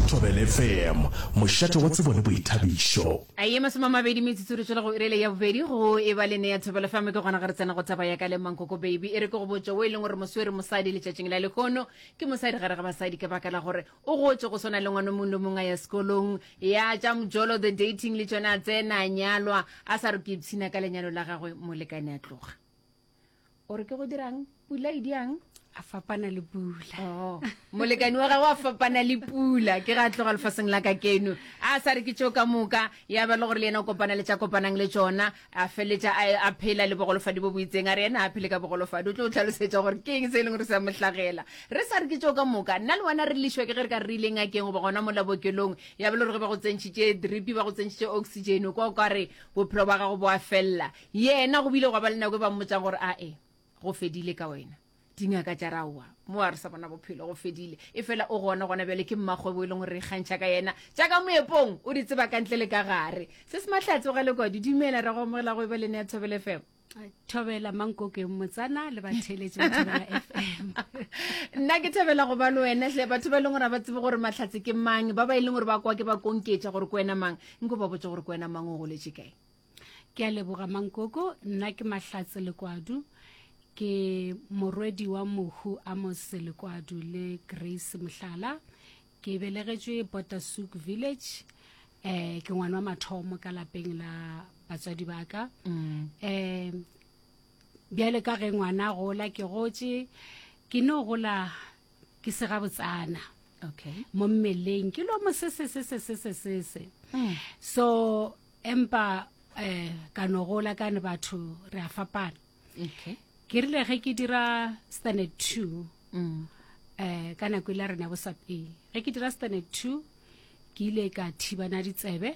Thobelfm, mošate wa tsebo le boithabišo. A ye masome a mabedi metsotso re tšwela go iri ele ya bobedi go e ba le ne ya thobela fm ke gona ge re tsena go taba ya ka le mankoko baby e re ke go botša wo e leng gore moswere mosadi letšatšing la lehono ke mosadi gare ga basadi ka baka la gore o gotše go swana le ngwana mong le mong a ya sekolong ya tša mojolo the dating le tšone a tsena a nyalwa a sa re ke ipshina ka lenyalo la gagwe molekane a tloga o re ke go dirang pula e diang a fapana le pula oh. molekani wa gagwe a fapana le pula ke ga a tloga lefaseng la ka keno a sa re ke tšeo ka moka ya ba le gore le yena o kopana le tša kopanang le tsona a feletša a phela le bogolofadi bo boitseng a re yena a phele ka bogolofadi o tlo o tlhalosetša gore ke eng se e leng gore sa mohlagela re sa re ke tšeo ka moka nna le wena re lešwa ke ge re ka re re ileng a keng goba gona mola bokelong ya ba le gore ge ba go tsentšhitše dripi ba go tsentšhitše oxygen kwa o ka re bophelo ba gago bo a felela Yena go bile gwa ba le nako e ba mmotsang gore a e, go fedile ka wena. Dingaka tša re aowa, mo a re sa bona bophelo, go fedile. E fela o gona gona bjale, ke mmakgwebo e leng gore re ikgantšha ka yena. Tša ka moepong o di tseba ka ntle le ka gare. Se se Mahlatse o galekwa, di dumela re go amogela go e ba le Nea Thobela FM. Thobela Mankokeng Motsana le batheletši ba Thobela FM. Nna ke thabela go ba le wena hle batho ba e leng gore ga ba tsebe gore Mahlatse ke mang, ba ba e leng gore ba kwa ke ba konketša gore ke wena mang, nko ba botse gore ke wena mang o goletše kae. Ke a leboga Mankoko, nna ke Mahlatse Lekwadu, ke morwedi wa Mohu Amos Lekwadu le Grace Mohlala. Ke belegetšwe Bottasuk Village. Eh, ke ngwana wa mathomo ka lapeng la batswadi ba ka. Mm. Eh, bjale ka ge ngwana a gola ke gotše ke no gola ke sega botsana Okay. mo mmeleng ke lo mosese sese sese sese Mm. so empa eh ka no gola ka ne batho re a fapana okay ke rile ge ke dira standard two mm. eh ka nako ile rena bo sape ge ke dira standard two ke ile ka thibana ditsebe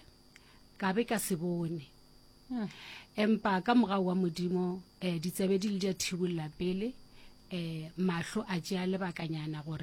ka be ka se bone hmm. empa ka mogao wa modimo um ditsebe di le di a thibolla pele um mahlo a tšea lebakanyana gore